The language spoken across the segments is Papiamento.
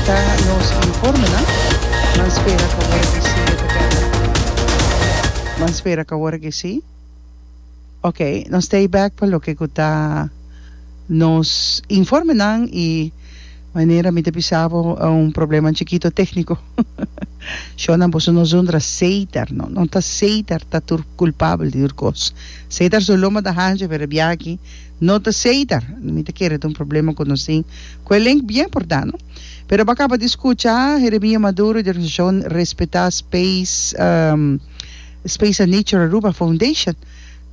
Ta nos informenan. Nan spera cu awor aki si e ta beka. Nan spera cu awor aki si. Ok, nos ta e bek pa loke cu ta nos informenan y manera mi ta bisa bo un problema chikito tecnico. Sho nan boso nos undra Cedar no, no ta Cedar ta tur culpabel di tur cos. Cedar su loma ta hanchi pero e biaha aki. No ta seitar, mi ta kere ta un problema cu nos tin cu e link bien por dano. Pero bo a caba di scucha Jeremia Maduro di organisacion respeta space Space and Nature Aruba Foundation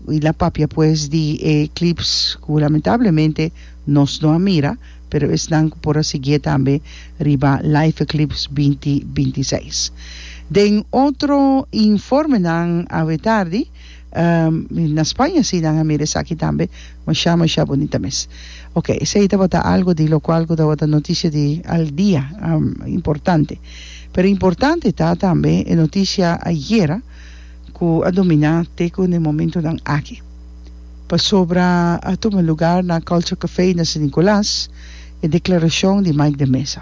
y la papia pues di e clips cu lamentablemente nos no a mira pero esnan cu por a sigie tambe riba Live Eclipse binti binti seis. Den otro informenan awe tardi. na Spaña si nan a mira esaki tambe masha masha bunita mes ok esei tabata algu di lokual ku tabata notisia di al dia importante pero importante ta tambe e notisia ayera ku a dominá te ku ne momentunan aki pasobra a tuma lugar na Culture Café na San Nicolas e deklarashon di Mike de Meza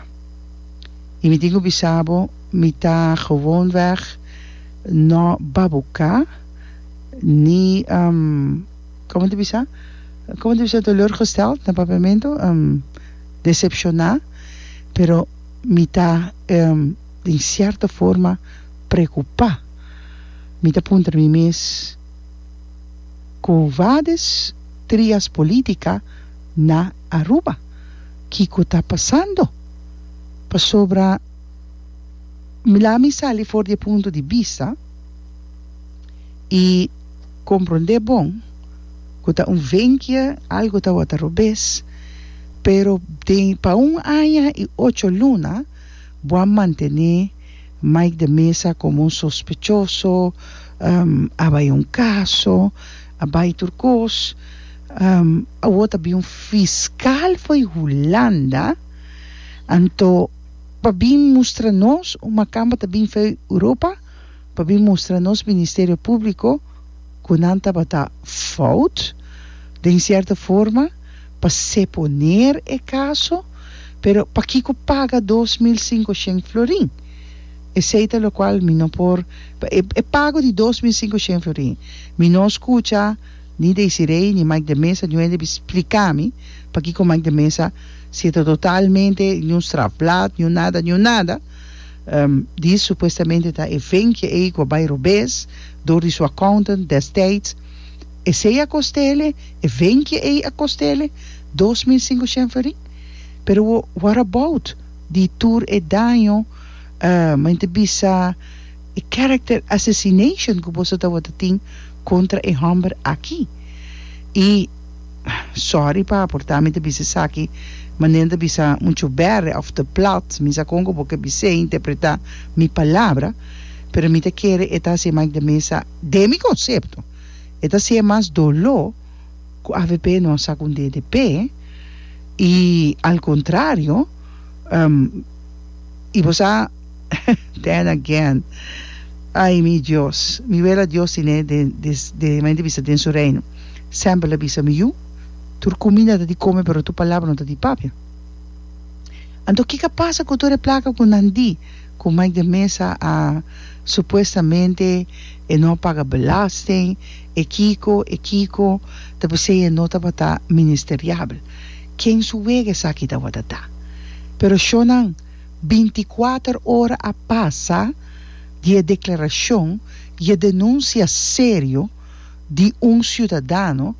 i mi tin ku bisa bo mi ta gewonweg. No ba buka ni como ta bisa como ta bisa teleurgesteld na papiamento decepciona pero mi ta den cierto forma preocupa mi ta puntra na mi mes cu vades trias politica na Aruba kico ta pasando pasobra mi laga mi sali for di e punto di bista y comprende bon cu ta un venkia algo tabata robes pero den pa un aña y ocho luna bo a mantene Mike de Meza como un sospechoso a bay un caso a bay tur cos awo ta bin un fiscal fo'i Hulanda anto. pa bin mustra nos un makamba ta bin fei Europa pa bin mustra nos ministerio publico cu nan tabata fout den cierto forma pa seponer e caso pero pakico paga dos mil sinkoshen florin esey ta locual mi no por e pago di dos mil sinkoshen florin mi no scucha Ni Desiree ni Mike de Meza no hende bin spliká mi pakiko Mike de Meza seta totalmente di un strafblad, di un nada, di un nada. Dis supuestamente ta e ventje ei ku a bai robes dor di su accountant destijds. Esei a kostele, e ventje ei a kostele dos mil sinku shenferin. Pero what about di tur e daño men ta bisa. E character assassination cu boso ta worde tin contra e homber aki. Y sorry pa aporta mi ta bisa esaki ma Nel ta bisa mucho berre of te plat, mi sa con cu bo ke bis'e interpreta mi palabra pero mi ta kere e ta haci'e Mike de Meza den mi concepto e ta haci'e mas dolo cu avp no a sa cu DDP y al contrario y bo sa then again ay mi Dios mi wela Dios tin e den de main di bisa den su reino semper lo a bisa mi yu tur cuminda ta di come pero tur palabra no ta di papia anto kica pasa cu tur e placa cu nan di cu Mike de Meza a supuestamente e no a paga belasting e kico e kico ta pesey e no tabata ministeriabel ken su wega esaki tawata ta pero shonan. Bintikuater ora a pasa di e deklarashon i e denunsia serio di un siudadano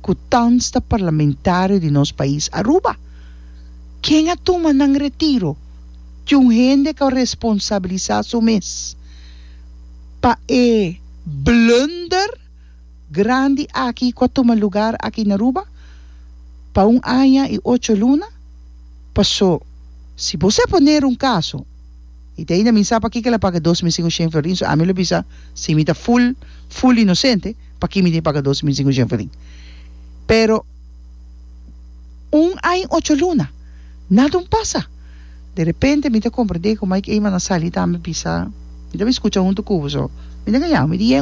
ku tans ta parlamentario di nos pais Aruba. Ken a tuma nan retiro di un hende ku a responsabilisa su mes pa e blunder? grandi aki ku a tuma lugar aki na Aruba pa un aña i ocho luna. Paso, si bo sa poner un kaso, i te ainda mi sa pakiko el a paga dos mil sin oshen florin, so ami lo bisa si mi ta ful, ful inosente, pakiko mi tin paga dos mil sin oshen florin. Pero, un aña i ocho luna, nadun pasa. De repente mi ta komprendé ku Mike Eman a sali tambe bisa, mi tabata skucha huntu ku bo, so mi ta ngaña bo, mi di,